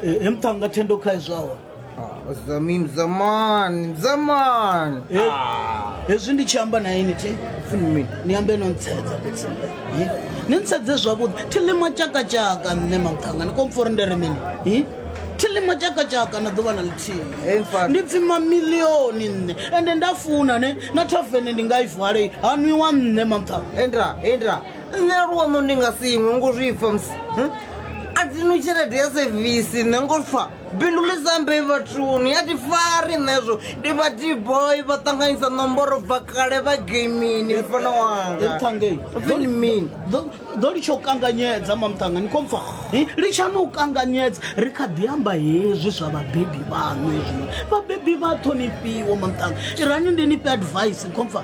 Eh, em tanga tendo kai zwawa Ah, zamim zaman zaman Eh, Ah, hezwi ndi tshi amba na ini thi funi mini ni ambe no ntshedza fhedzi Eh, ni ntshedze zwavhuḓi thilima tshakatshaka nṋe mathanga ni kompfa uri ndi ri mini Eh, thilima tshakatshaka na ḓuvha na lithihi Hey, mfana. ndi pfi mamilioni nṋe ende nda funa ne na thavene ndi nga i vale ha nwiwa nṋe mathanga enda enda nṋe luono ndi nga si iṅwe ngo zwi pfa musi hm? a dzi no tshelede ya sevisi nṋe ngo pfa bindu ḽi sambe vhathuni ya ti fari nṋezwo ndi vha dboy vha ṱanganyisa ṋomboro bva kale vha gamini mfana wangaini ḓo litsha u kanganyedza mamṱanga ni khompfa litshani u kanganyedza ri kha ḓi amba hezwi zwa vhabebi vhaṋu hezwi vhabebi vha ṱhonifhiwa mamṱanga irani ndi ni fhe advice khompfa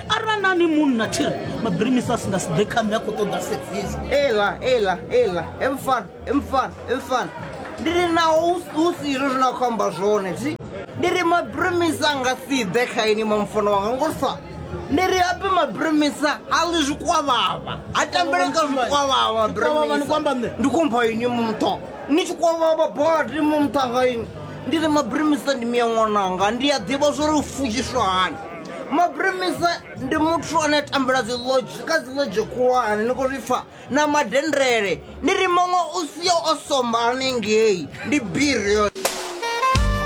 arali na ni munna tshiri mabirimisi a si nga si ḓe kha nṋe a khou ṱoḓa sevisi ela ela ela emfana emfana emfana ndi ri naho hu si izwo zwine a khou amba zwone thi ndi ri mabirimisi a nga si ḓe kha ini mamfana wanga ngolisa ndi ri ape mabirimisa a ḽi zwikwavhava a tambele kha zwikwavhava mabirimisa ndi kumpha ini mumtho ni tshi kwavhava badi mumtha nga ini ndi ri mabirimisa ndi miya ṅwananga ndi a ḓivha zwo ri u futshiswa hani maprimisa ndi muthu ane a tambula dzi lodge kha dzi lodge khulwane ni khou zwi pfa na madendele ni ri muṅwe u sia o somba hanengei ndi biri yo